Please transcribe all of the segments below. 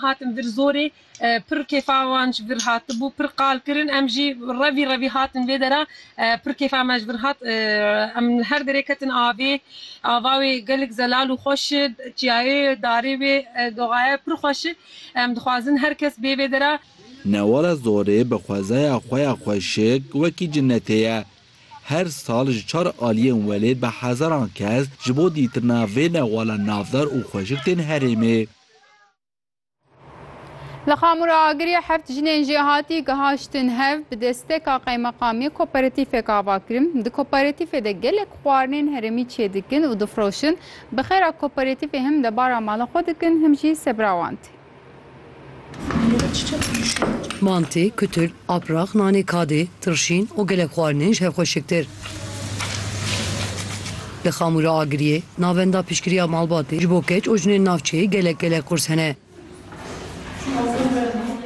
Hatin vir zorê, pir kêfa wan ji vir hatibû, pir qal kirin, em jî revî revî hatin vê dera, pir kêfa me ji vir hat, em li her derê ketin avê, ava wê gelek zelal û xweş e, çiyayê wê, darê wê, doxaye pir xweş e, em dixwazin her kes bê vê dera. Newala Zorê bi xwezaya xwe ya xweşik wekî cinetê ye. Her sal ji çar aliyên welêt bi hezaran kes ji bo dîtina vê newala navdar û xweşik tên herêmê. Li Xamura Agiriyê heft jinên jê hatî gihaştin hev bi desteka qeymeqamiyê koperatîfek ava kirin. Di koperatîfê de gelek xwarinên herêmî çêdikin û difroşin. Bi xêra koperatîfê him debara mala xwe dikin him jî sebira wan tê. Mantê, kutil, aprax, nanê kadê, tirşîn û gelek xwarinên ji hev xweşiktir. Li Xamûra Agiriyê navenda piştgiriya malbatê ji bo keç û jinên navçeyê gelek gelek qurs hene.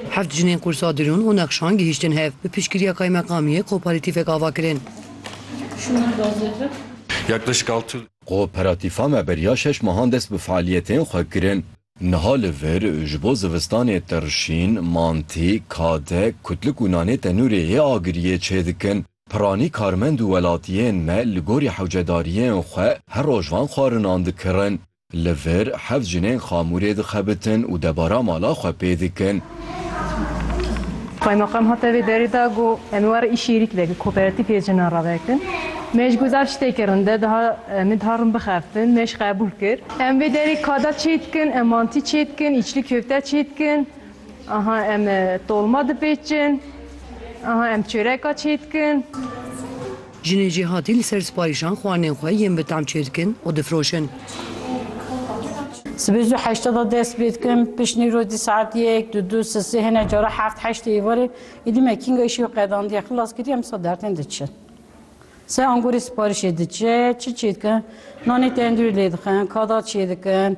Heft jinên qursa Dirûn û Nexşan gihîştin hev, bi piştgiriya kaymeqamiyê koparatîfek ava kirin. Koparatîfa me beriya şeş mehan dest bi fealiyetên xwe kirin. Niha li vir ji bo zivistanê tirşîn, mantî, kade, kutlik û nanê tenûrê yê Agiriyê çêdikin. Piranî karmend û welatiyên me li gorî hewcedariyên xwe her roj van xwarinan dikirin. Li vir heft jinên xamûrê dixebitin û debara mala xwe pê dikin. Qaymeqam hate vê derê de got, Em ê were îşêrî kidek li koperatîfê jinan re vekin. Me ji guzar şitê kirin de diha min diha rin bixebtin. Me jî qebûl kir. Em vê derê kada çêdikin, em mantî çêdikin, îçli köfte çêdikin, Aha em tolma dipêçin. Aha em çöreka çêdikin. Jinê cêhatî li ser siparîşan xwarinên xwe yên bi tam çêdikin û difroşin. Sibê zû heşta da dest pê dikim, piştî rojî saet yek, du, du, si, si, hinek cara heft, heştê êvarê. Êdî me kînga îşê wî qedandiye, xilas kiriye em sed dertên diçin. Sey angorê siparîşê diçe, çi çêdikin? Nanê tendurî lê dixin, kada çêdikin.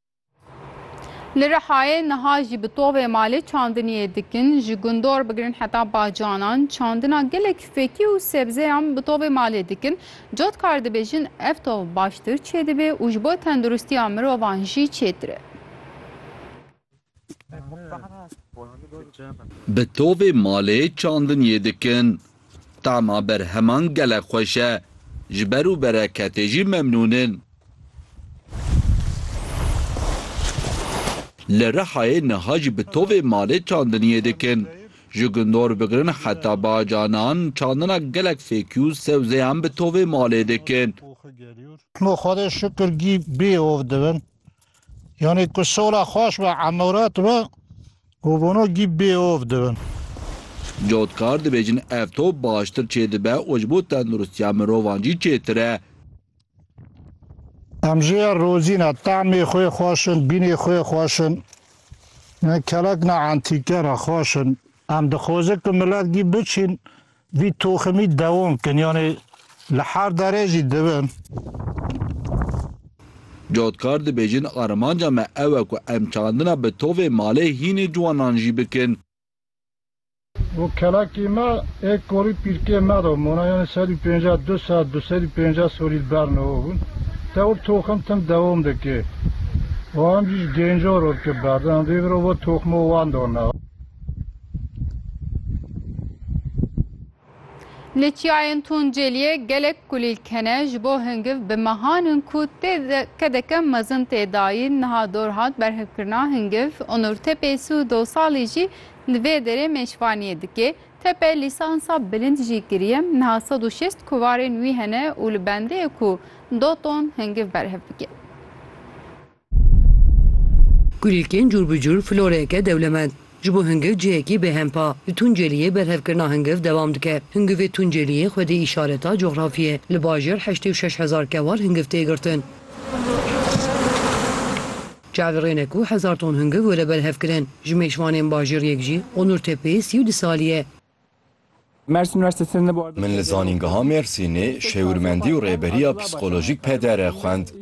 Li Rihayê niha jî bi tovê malê çandiniyê dikin. Ji Gundor bigirin heta Bacanan çandina gelek fekî û sebzeyan bi tovê malê dikin. Cotkar dibêjin ev tov baştir çêdibê û ji bo tenduristiya mirovan jî çêtir e. Bi tovê malê çandiniyê dikin. Tama berheman gelek xweş e. Ji ber û bereketê jî memnûn in. Li Rihayê niha jî bi tovê malê çandiniyê dikin. Ji gundor bigirin heta bacanan çandina gelek fêkî û sewzeyan bi tovê malê dikin. Xwedê şikir gî bê ov dibin. Yanî ku sola xweş be emoret be û bono gî bêov dibin. Cotkar dibêjin ev top baştir çêdibe û ji bo tenduristiya mirovan jî çêtir e. Em jê ya rozî ne, temê xwe xweş in, bînê xwe xweş in. Kelek ne entîke ne xweş in. Em dixwezin ku milet gî biçîn. Vî toximî dewam bikin yanî li her derê jî dibin. Cotkar dibêjin armanca me ew e ku em çandina bi tovê malê hînê ciwanan jî bikin. Bo kelekê me ê korî pîrkê me de mona yanî sed û pênceh du sed du sed û pênceh solî li ber me hebûn. Tewr toxim tim dewam dike û em jî ji gêncan re dike berdem. Vê vir e bo toxima wan de ne. Li çiyayên Tuncêliyê gelek kulîlk hene ji bo hingiv bi mehan in ku tê de kedeke mezin tê dayîn. Niha dor hat berhevkirina hingiv. Onur Tepê sî û du salî jî li vê derê mêşvaniyê dike. Tepe lîsansa bilind jî kiriye. Niha sed û şêst kovarên wî hene û li bendeyê ku du ton hingiv berhev dike. Kulîlkên cûr bi cûr floreyeke dewlemend ji bo hingiv cihekî bêhempa li Tunceliyê berhevkirina hingiv dewam dike. Hingivê Tunceliyê xwedî îşareta coxrafî ye. Li bajêr heştê û şeş hezar kewal hingiv tê girtin. Çavirêne ku hezar ton hingiv were berhevkirin. Ji mêşvanên bajêr yek jî Onur Tepeyê sî û du salî ye. Min li zanîngeha Mêrsînê şêwirmendî û rêberiya psîkolojîk pedere xwend.